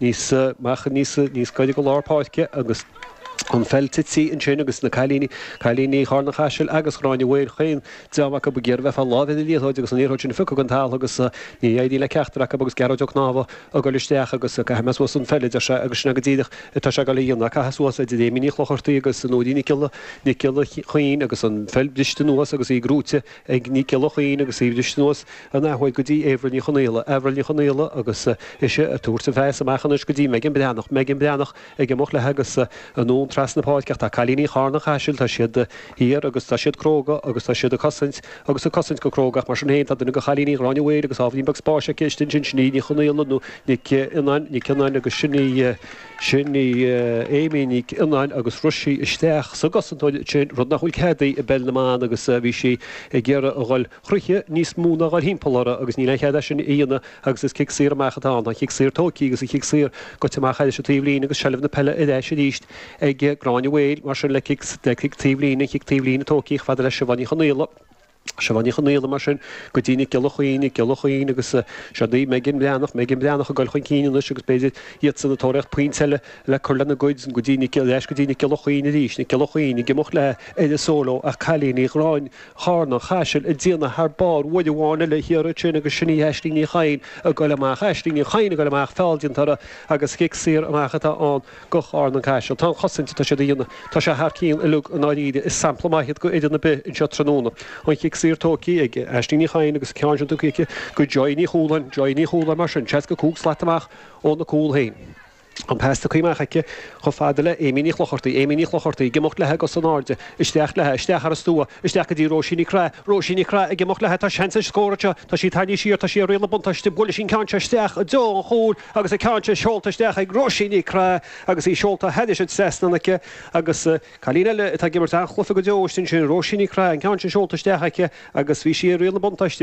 Níos amach, níos níos gaire go lár páirce agus an pheil tite ansin agus na cailíní, cailíní Chárna Chaisil agus Ghráinne Mhaoil chaon dream acu ag iarraidh bheith a láimhe na liathróide agus an liathróid sin a phiocadh den talamh agus níor éirigh le ceachtar acu agus Gearóid Ó Cnámha a goil isteach agus caithfidh mé suas an pheil a deir sé agus sin é go díreach atá sé ag goil a dhéanamh, caitheadh suas idir Amy Ní Chlochartaigh agus Nóirín Nic Giolla Nic Giolla Chaoin agus an pheil briste anuas agus í gnóite ag Nic Giolla Chaoin agus í briste anuas An athuair go dtí Avril Ní Chonaola, Avril Ní Chonaola agus ise ag tabhairt an pheil amach anois go dtí Megan Breathnach, Megan Breathnach ag imeacht léi agus anonn trasna na páirce ach tá cailíní Charna Chaisil, tá siad thiar agus tá siad cróga agus tá siad ag cosaint agus ag cosaint go cróga ach mar sin féin tá duine de chailíní Ghráinne Mhaoil agus ábhairín beag spáis aici istigh ansin, sin í Ní Chonaola nó Nic Fhionnáin, Nic Fhionnáin agus sin í, sin í Amy Nic Fhionnáin agus rith sí isteach sa gcosantóir ansin, rud nach bhfuil cead di i bPeil na mBan agus bhí sí ag iarraidh a dhul. thríthi níos mó ná a dhul timpeall uirthi agus níl aon chead aici é sin a dhéanamh agus is cic saor amach atá ann. Tá an chic saor tóigtí agus an chic saor goite amach thar an taobh líne agus seilbh na peile ar ais arís ag Gráinne Mhaoil mar sin le cic taobh líne an chic taobh líne tóigtí chomh fada le Siobhán Ní Chonaola. Siobhán Ní Chonaola mar sin go dtí Nic Giolla Chaoin, Nic Giolla Chaoin agus seo daoibh Megan Breathnach, Megan Breathnach ag goil chun cinn anois agus b'fhéidir iadsan ag tóraíocht pointe eile le cur lena gcuid go dtí Nic ar ais go dtí Nic Giolla Chaoin arís, Nic Giolla Chaoin ag imeacht léi ar solo ach cailíní Ghráinne. Charna Chaisil ag déanamh thar barr uair amháin eile thiar ansin agus sin í Aisling Ní Chadhain ag goil amach. Aisling Ní Chadhain ag goil amach, feall déanta uirthi agus cic saor amach atá ann go Charna-Caiseal. Tá an chosaint atá siad a dhéanamh, tá sé thar cionn uilig i ndáiríre. Is sampla maith iad go fhoireann ar bith anseo tráthnóna. An chic saor tógtha ag Aisling Ní Chadhain agus an ceann sin tugtha aici go Joy Ní Chualáin. Joy Ní Chualáin mar sin, 65 slat amach óna cúl féin. An pas tugtha amach aici chomh fada le Amy Ní Chlochartaigh, Amy Ní Chlochartaigh ag imeacht léi cos in airde, isteach léi, isteach thar an stua, isteach go dtí Róisín Ní Craith, Róisín Ní Craith ag imeacht léi, tá seans ar scór anseo, tá sí tarraingthe siar, tá sé ag riail na buntáiste, buaileadh an ceann seo isteach i dtreo an chúil agus an ceann seo seolta isteach ag Róisín Ní Craith agus í seolta thar an trasnán aici agus cailín eile atá ag imirt an-chluife go deo ansin sin Róisín Ní Craith, an ceann sin seolta isteach aici agus bhí sí ag riail na buntáiste.